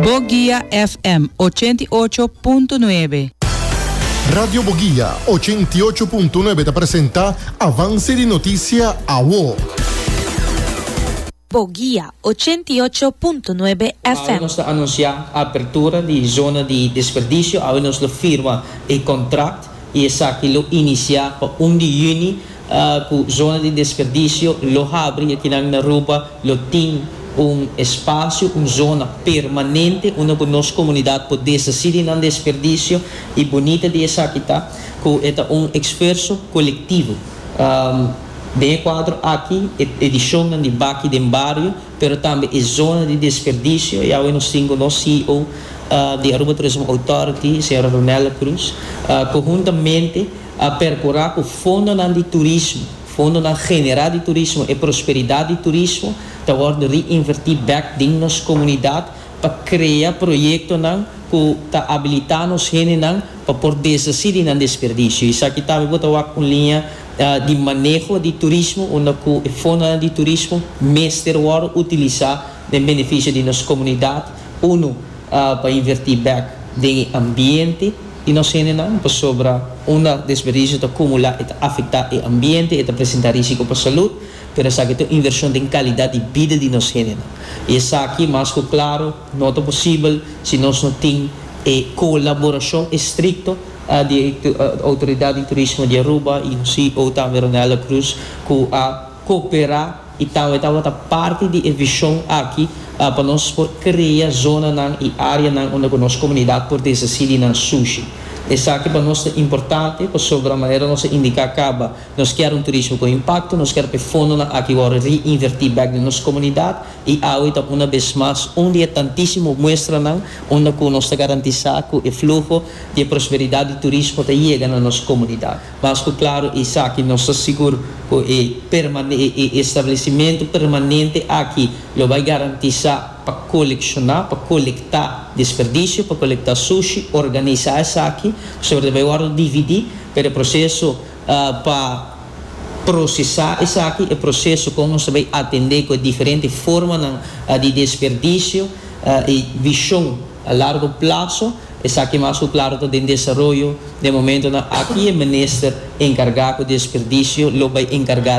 Boguia FM ochenta i ocho punto nuebe. Radio Boguia ochenta i ocho punto nuebe ta presenta Avance di Noticia Awo. Boguia ochenta i ocho punto nuebe FM. Awe nos ta anuncia apertura di zona di desperdicio, awe nos lo firma e contract. y esaki lo inicia pa un di juni cu zona di desperdicio lo habri y aki nan na Aruba lo tin un espacio, un zona permanente unda cu nos comunidad por deshaci di nan desperdicio y bunita di esaki ta cu e ta un exfuerso colectivo. Den e cuadro aki e edicion nan di Baki den Bario. pero tambe e zona di desperdicio y awe nos tin cu nos CEO di Aruba Tourism Authority señora Ronella Cruz conhuntamente a percura cu fondonan di turismo, fondonan genera di turismo, e prosperidad di turismo ta wordo reinverti bek den nos comunidad pa crea proyectonan cu ta abilita nos hendenan pa por deshaci di nan desperdicio y esaki tambe bo ta wak un linea Di maneho di turismo unda ku e fondonan di turismo mester wòrdu utilisá den benefisio di nos komunidat, unu, pa invertí bèk den e ambiente di nos hendenan, pasobra unda desperdisio ta kumulá e ta afektá e ambiente, e ta presentá rísiko pa salud, pero esaki ta un invershon den kalidat di bida di nos hendenan. I esaki mas ku klaro. No ta posibel si nos no tin e colaboracion estricto di e Autoridad di Turismo di Aruba y nos ceo tambe Ronella Cruz cu a coopera y tambe tabata parti di e vision aki pa nos por crea zonanan y areanan unda cu nos comunidad por desaci di nan sushi. Esaki pa nos ta importante pasobra manera nos a indica caba nos kier un turismo con impacto, nos kier pa e fondonan aki wor reinverti bek den nos comunidad, I awe ta una bes mas un di e tantísimo muestranan unda ku nos ta garantisá ku e fluho di e prosperidat di turismo ta yega na nos komunidat. Mas ku klaru esaki nos ta sigur ku e establesimentu permanente aki lo bai garantisá pa kolekshoná, pa kolektá desperdisio, pa kolektá sushi, organisá esaki, suerte bai wòrdu dividí, pero e proseso Pa prosesá esaki, e proseso kon nos ta bai atendé ku e diferente formanan di desperdisio i vishon a largo plaso, esaki mas ku klaro ta den desaroyo den momentonan. Aki e minister enkargá ku desperdisio lo bai enkargá.